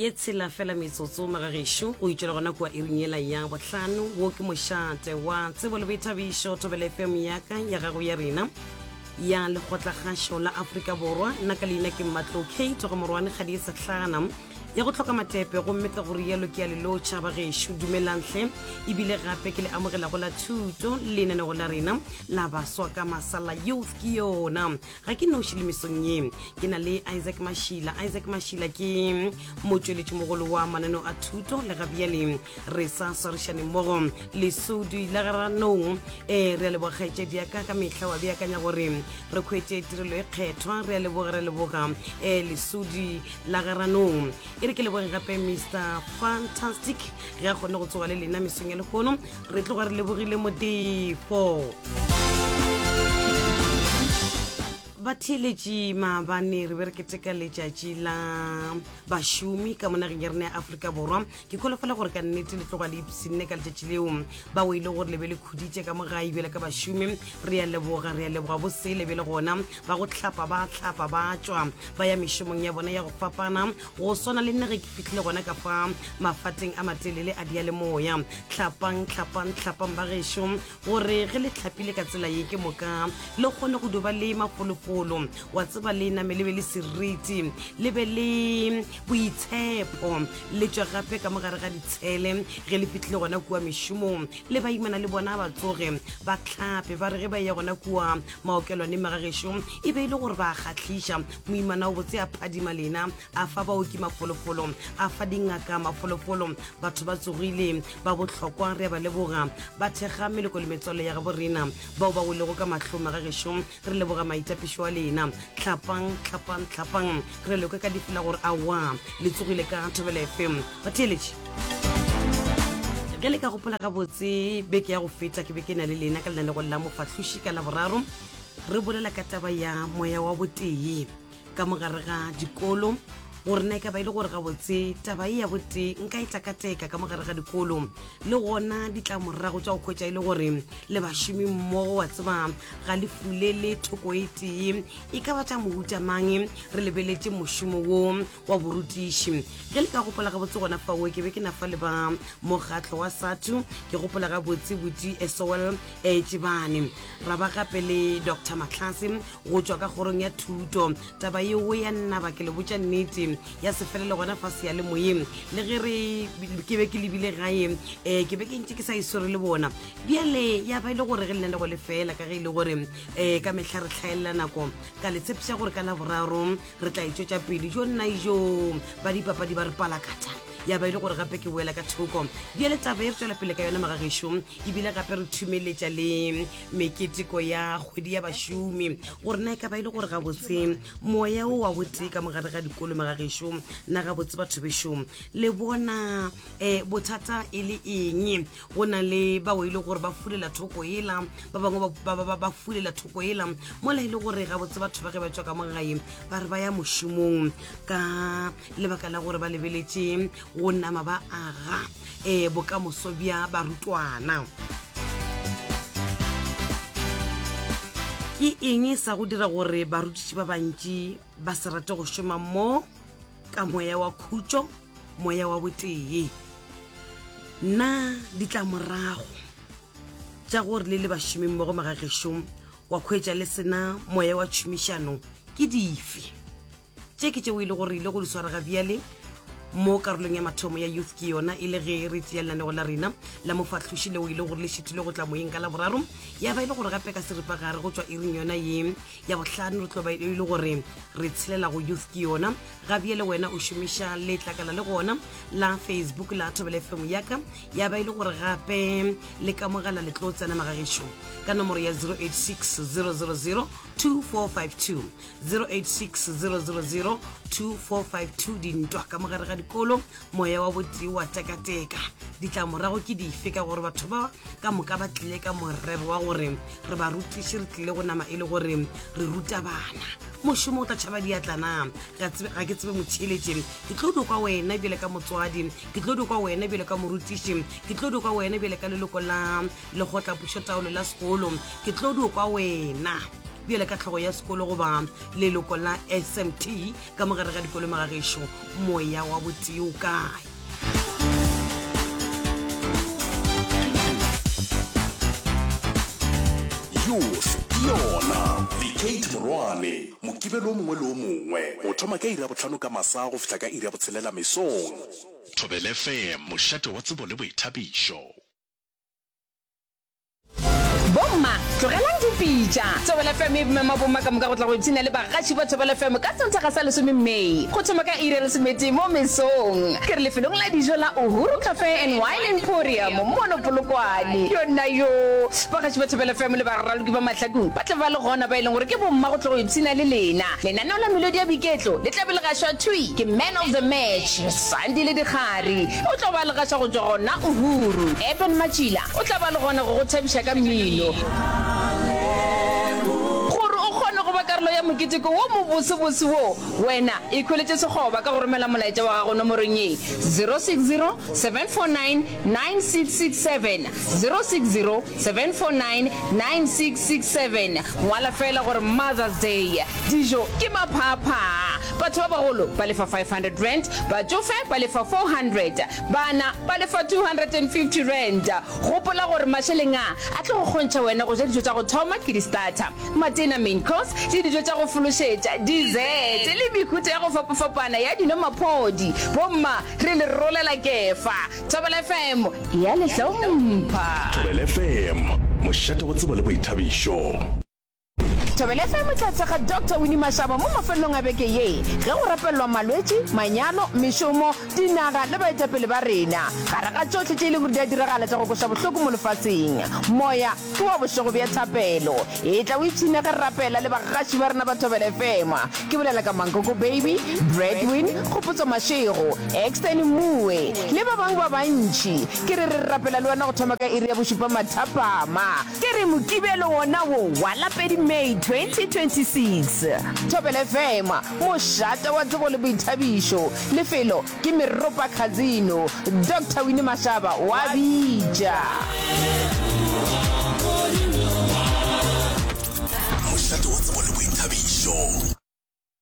ye tshela fela metsotso magagešo o itšwela gona kua iring yela ya bohlano wo ke mošate wa tsebo le boithabišo thobele fm yaka ya gago ya rena ya lekgotlakgašo la aforika borwa nna ka leina ke mmatlo kate go morwane ga di e sehlana ya go tlhoka matepe gomme ka gore yalo ke ya lelotšha ba gešo dumelantle ebile gape ke le amogelago la thuto lenanego la rena la baswa ka masala youth ke yona ga ke noši le mesong ye ke na le isaac mašila isaac mašila ke motšweletši mogolo wa mananeo a thuto le gabjale re sa swarišane mmogo lesudi la garanong um eh, re a lebogakgaetšedi ya ka ka mehla wa beakanya gore re kgwetse tirelo e kgethwa re a leboga re leboga um lesudi la garanong e re ke leboge gape mr fantastic ge a kgone go tsoga le lena mesong ya lehono re tloga re lebogile modefo batheeletši maabane re be re keteka letšatši la bašomi ka monageng ya rena ya aforika borwa ke kholofela gore ka nnete le tloga le ipsinne ka letšatši leo ba o e le gore le be le khuditše ka mo ga ebele ka bašomi re ya leboga re ya leboga bo sele be le gona ba go tlhapa ba tlhapa ba tswa ba ya mešomong ya bona ya go fapana go swana le nna ge ke fitlhile gona ka fa mafateng a matelele a diyalemoya tlhapang tlhapang tlhapang ba gešo gore ge le tlhapile ka tsela ye ke moka le kgone go duba le mafolofolo wa tseba le name le be le seriti le be le boitshepo le tswa gape ka mogare ga ditshele ge le fitlhile gona kua mešomong le baimana le bona ba tsoge ba tlhape ba re ge ba ya gona kua maokelwaneng magageso e be e le gore ba kgatlhiša Moimana o botse a phadima lena, a fa baoki mafolofolo, a fa dingaka mafolofolo. Batho ba tsogile, ba bohlokwa, re a ba leboga. Ba thekga meloko le metswalle ya gabo rena, bao ba welego ka mahlong a ga gešo, re leboga maitapišo a lena. Tlhapang, tlhapang, tlhapang. Re a le kwa ka dife la gore awa, le tsogile ka Thobela FM. Batheeletši. ge le ka gopola gabotse beke ya go feta ke be ke na le lena ka lenanegong la mofahloši ka laboraro re bolela ka taba ya moya wa botee ka mogare ga dikolo gore na e ka ba e le gore gabotse taba e ya botee nka e takateka ka mogare ga dikolo le gona ditlamorago tsa go kgwetsa e le gore le bašomi mmogo wa tseba ga le fule le thoko e tee e ka batla mohutamang re lebeletse mošomo wo wa borutiši. Ge le ka gopola gabotse gona fao, ke be ke na fa le ba mokgatlo wa SATU, ke gopola gabotse Buti Esowell Eetšebane, ra ba gape le Doctor Matlase go tšwa ka kgorong ya thuto. Taba yeo ya nnaba, ke le botša nnete, ya se felele gona fa seyalemoyeng. Le ge re, ke be ke lebile gae, um ke be ke ntše ke sa e swere le bona. Bjale ya ba e le gore ge lenaneo le fela, ka ge e le gore um ka mehla re hlaelela nako, ka le tshepiša gore ka Laboraro re tla e tšwetša pele jo nna jo ba dipapadi ba re palakatha ya ba e le gore gape ke boela ka thoko bjale taba e re tswela pele ka yone magageso ebile gape re thumeletša le meketeko ya kgwedi ya bašomi gore na e ka ba e le gore gabotse moya o wa botee ka mogare ga dikolo magageso na gabotse batho bešo le bona um bothata e le eng go na le bao e le gore ba fulela thoko ela ba bangwe ba fulela thoko ela mola e le gore gabotse batho ba ge ba tswa ka mogae ba re ba ya mošomong ka lebaka la gore ba lebeletše go nama ba aga um bokamoso bja barutwana ke eng sa go dira gore barutiši ba bantši ba se rate go šoma mo ka moya wa khutšo moya wa botee na ditlamorago tša gore le le bašomeng mo go magagešong wa kgwetša le sena moya wa tšhomišano ke dife tše ke tšeo e le gore ile go di swara ga bjale mo karolong ya mathomo ya youth ke yona e le ge re tseya lenanego la rena la mofahloši leo e le gore le šethile go tla moyeng ka laboraro ya ba e le gore gape ka seripagare go tšwa iring yona ye ya bohlano re tlo ba e le gore re tshelela go youth ke yona gabje le wena o šomiša letlakala le gona la facebook la thobele fm yaka ya ba e le gore gape le ka mogala le tlo tsena magagešo ka nomoro ya 086 000 2452 086 000 2452 dintwa ka mogare ga dikolo moya wa botee wa tekateka ditlamorago ke dife ka gore batho ba ka moka ba tlile ka morero wa gore re ba rutiše re tlile go nama e le gore re ruta bana mošomo o tla tšhaba diatlana ga ke tsebe motšheletše ke tlo dikwa wena bjale ka motswadi ke tlo dikwa wena bjale ka morutiši ke tlo dikwa wena bjale ka leloko la legotlapušo taolo la sekolo ke tlo dikwa wena bjale ka tlhogo ya sekolo goba leloko la smt Ka mogare ga dikolomo ga gešo, moya wa botee o kae? Youth ke yona The Kate Morwane Mokibelo o mongwe le o mongwe o thoma ka iri ya bohlano ka masa go fihla ka iri ya botshelela mesong. Thobelefm, mošate wa tsebo le boithabišo. Bomma, tlogelang dipitša. Thobela FM e mema bomma ka moka go tla go ipshina le bagatši ba Thobela FM ka Sontaga sa lesome May, go thoma ka iri ya lesometee mo mesong. Ke re lefelong la dijo la Uhuru Cafe and Wine Emporium mono Polokwane. Yonnayoo! Bagatši ba Thobela FM le baraloki ba mahlakung ba tla ba le gona ba e leng gore ke bomma go tla go ipshina le lena. Lenaneo la melodi ya boiketlo le tla be le gašwa thwi ke Man of the Match. Sandi le Dikgari o tlo ba le gaša go tšwa gona Uhuru. Eben Matšila o tla ba le gona go go thabiša ka mmino. Gore o kgone go ba karolo ya moketeko wo mobosebose wo, wena ikhweletše sekgoba ka go romela molaetša wa gago nomorong ye, 060 749 9667, 060 7499667 Ngwala feela gore Mother's Day, dijo ke maphaaphaa, batho ba bagolo ba lefa R500, batšofe ba lefa R400, bana ba lefa R250. Gopola gore mašeleng a a tlo go kgontšha wena go ja dijo tša go thoma ke di-starter, matena, main course, le dijo tša go fološetša, dessert, le mehuta ya go fapafapana ya dino-maphodi. Bomma re le rolela kefa. Thobela FM ya le hlompha. Thobela FM, mošate wa tsebo le boithabišo. Thobela FM e tla thekga Doctor Winnie Mashaba mo mafelelong a beke ye ge go rapelelwa malwetši, manyalo, mešomo, dinaga le baetapele ba rena. Gare ga tšohle tše e lego di a diragala tša go kweša bohloko mo lefaseng, moya Ke wa bošego bja thapelo. Etla o ipshine ge re rapela le bagaši ba rena ba Thobela FM. Ke bolela ka Mankoko Baby, Bradwin, Kgopotso Mashego, Extern Mue le ba bangwe ba bantši. Ke re re rapela le wena go thoma ka iri ya bošupa mathapama. Ke re Mokibelo wona wo wa la pedi May 2026. Thobela FM, mošate wa tsebo le boithabišo. Lefelo, ke Meropa Khazino, Doctor Winnie Mashaba wa bitša. Mošate wa tsebo le boithabišo.